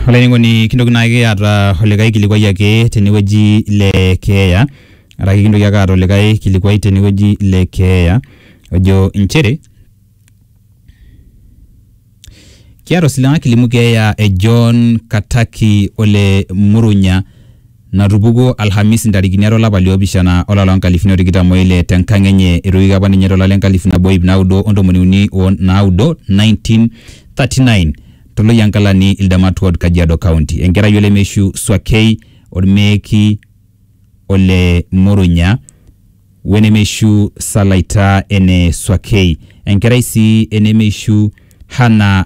Olainining'oni kintoki naa ake aata olikai kilikuai ake tene wueji le keeya araki kintoki ake aata olikai kilikuai tene wueji le keeya ojo inchere, kiata osiligi kilimu keeya e John Kataki ole Murunya. natupukuo Alhamisi ntarikini are olapa liopishana olari loo nkalifuni o tikitam o ile te nkang enye etoiwuoki apa ninye to lari le nkalifu nabo o iip naudo o ntomoni uni o naudo, 1939, to Loyiankalani Ildamat Ward Kajiado County. Enkerai olemeishu Swakei Olmeeki ole Murunya we nemeishu Salaita ene Swakei. Enkerai sii enemeishu Hannah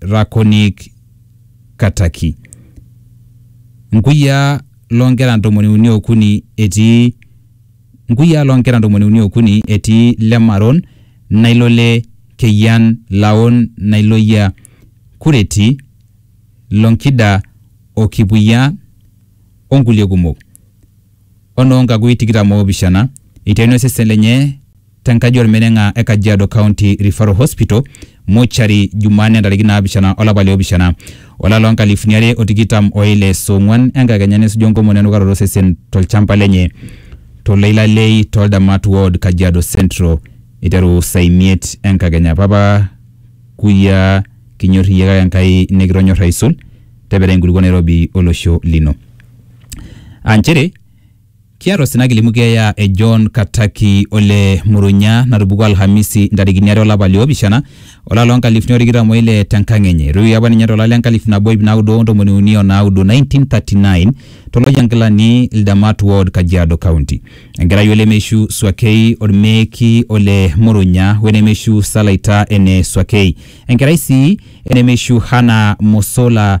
Rakonik Kataki. Nkuyiaa loo nkera ntomoni uni okuni etii Nkuyiaa loo nkera ntomoni uni okuni etii Lemaron, Nailole, Keyian, Laon, Nailoyia, Kureti, Lonkida o Kipuyia o nkulie kumok. o noo nkakui tikitam oopishana eitaini osesen lenye te nkaji o lmeneng'a e Kajiado County Referral Hospital Mortuary Jumanne ntarikini naapishana o lapa le opishana o lari loo nkalifuni are o tikitam o ile saa ong'uan enkakenya nesuju enkomono e nukaroto o sesen to lchamba lenye to Leilalei too Ldamat Ward Kajiado Central eiteru saa imiet enkakenya. Papa Kuya kinyor iyie kake Enkai nikitonyor aisul, tepera enkulukuoni nairobi o losho lino. aa nchere kiata osina kilimu keeya e John Kataki ole Murunya natupukuo Alhamisi ntarikini are olapa le opishana olapa loo nkalifuni o tikitam o ile tenkang enye. Eitoiwuoki apa ninye tolari le nkalifu nabo iip naudo o ntomoni uni o naudo, 1939, to Loyiankilani Ildamat Ward, Kajiado County. Enkerai o lemeishu Swakei Olmeeki ole Murunya we nemeishu Salaita ene Swakei. Enkerai sii e nemeishu Hannah Mosola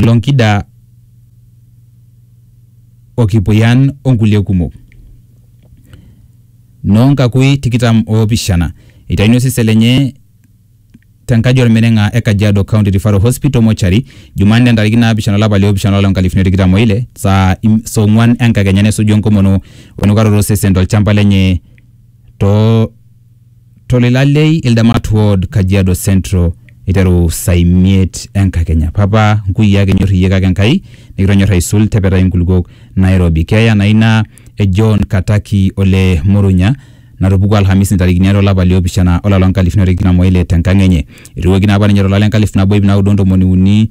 Lonkida o Kipuyan o nkulie kumok. Noo nkakui tikitam oopishana eitayuni osesen lenye te nkaji olmeneng'a e Kajiado County Referral Hospital Mortuary Jumanne entariki naapishana olapa le opishana olari nkalifuni o tikitam o ile saa ong'uan enkakenya nesuju enkomono o enukaroto osesen to lchamba lenye too Tolilalei Ildamat Ward, Kajiado Central eiteru saa imiet enkakenya. Papa nkuyiaa kinyor iyie kake Enkai nikitonyor aisul tepetai nkulukuok Nairobi. Keeya naa ina e John Kataki ole Murunya natupukuo Alhamisi ntarikini are olapa li opishana olari loo nkalifuni are o tikitam o ile te nkang enye. Eitoiwuoki naa apa ninye to lari le nkalifu nabo iip naudo o ntomoni uni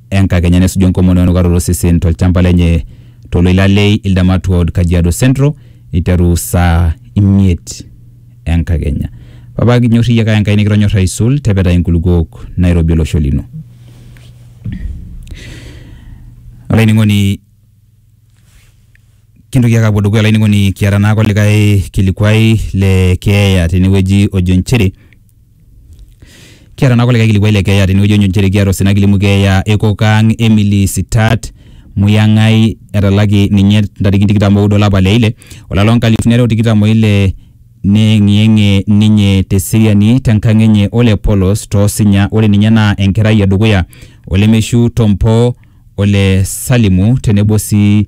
enkakenya nesuju enkomono enukaroto osesen tolchamba lenye toloila le Ildamat Ward, Kajiado Central eiteru saa imiet enkakenya. Papa kinyorri iyie kake Enkai nikitonyorra aisul tepetai inkulukuok nairobi olosho lino. Olainining'oni kintoki ake apuo dukuya olainining'oni kiata naake olikae kilikuai le keeya tenewueji ojo inchere Kiata naa kulikae kilikuai le keeya tenewueji onyo nchere kiata osina kilimu keeya e kokaang Emily Sitat Muyang'ai etalaki ninye ntarikini tikitam oudo olapa le ile olari loo nkalifuni are o tikitam o ile neyeng'iyeng'ie ninye te seriani te nkang enye ole polos too sinya ore ninye naa enkerai e dukuya ole Meshu Tompo ole Salimu tenebo sii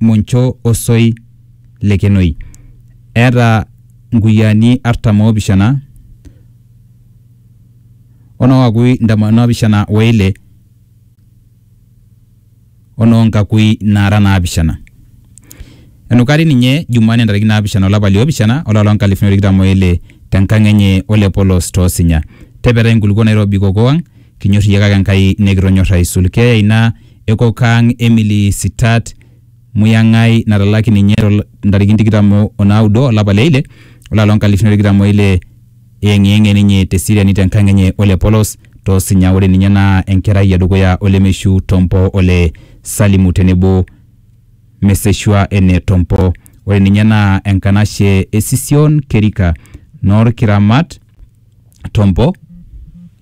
moncho osoi le kenoi. Eeta nkuyiaani artam o pishana o noo kakui ntomon o pishana o ile o noo nkakui naara naapishana. Enukari ninye Jumanne ntarikini naapishana olapa li opishana olari loo nkalifuni o tikitam o ile te nkang enye ole polos too sinya. Tepetai nkulukuok nairobi kokoo ang Kinyor iyie kake Enkai nikitonyor aisul. Keeya ina e kok ang e Emily Sitat Muyang'ai natalaki ninye to ntarikini tikitam o naudo olapa le ile olari loo nkalifuni are o tikitam o ile eyeng'iyeng'ie ninye te seriani te nkang enye ole polos to Sinya. Ore ninye naa enkerai e dukuya o lemeishu Tompo o le Salimu tenebo Meseshua ene Tompo. Ore ninye naa enkanashe e Sision Kerika noo Lkiramat Tompo.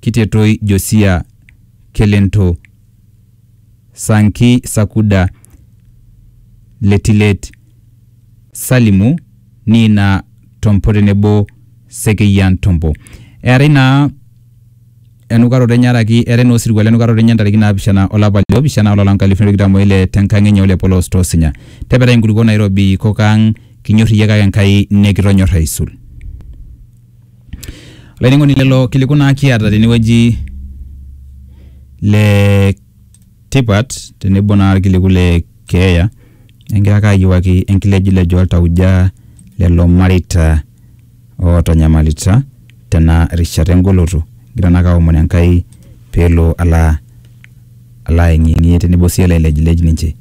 Kitetoi Josia Kelento, Sanki Sakuda Letilet, Salimu Niina Tompo tenebo Sekeyian Tompo. Eetai naa enukaroto enye araki eetai naa osirua lenukaroto enye ntariki naapishana olapa le opishana olapa lonkalifuni tikitam oile tenkang enye ole Polos Tosinya. Tepetai inkulukuok nairobi kok ang kinyor iyie kake Enkai nikitonyor aisul. Olainining'oni lelo kiliku naa kiata tenewueji le tipat tenebo naa irkiliku le keeya egira ake ayiewuaki enkilejilejo oltauja lelo mareita ootanyamalita tena rishata engoloto. Egira naake aomon Enkai peelo ala ala ayeng'iyeng'ie tenebo sii elo ailejilej ninche.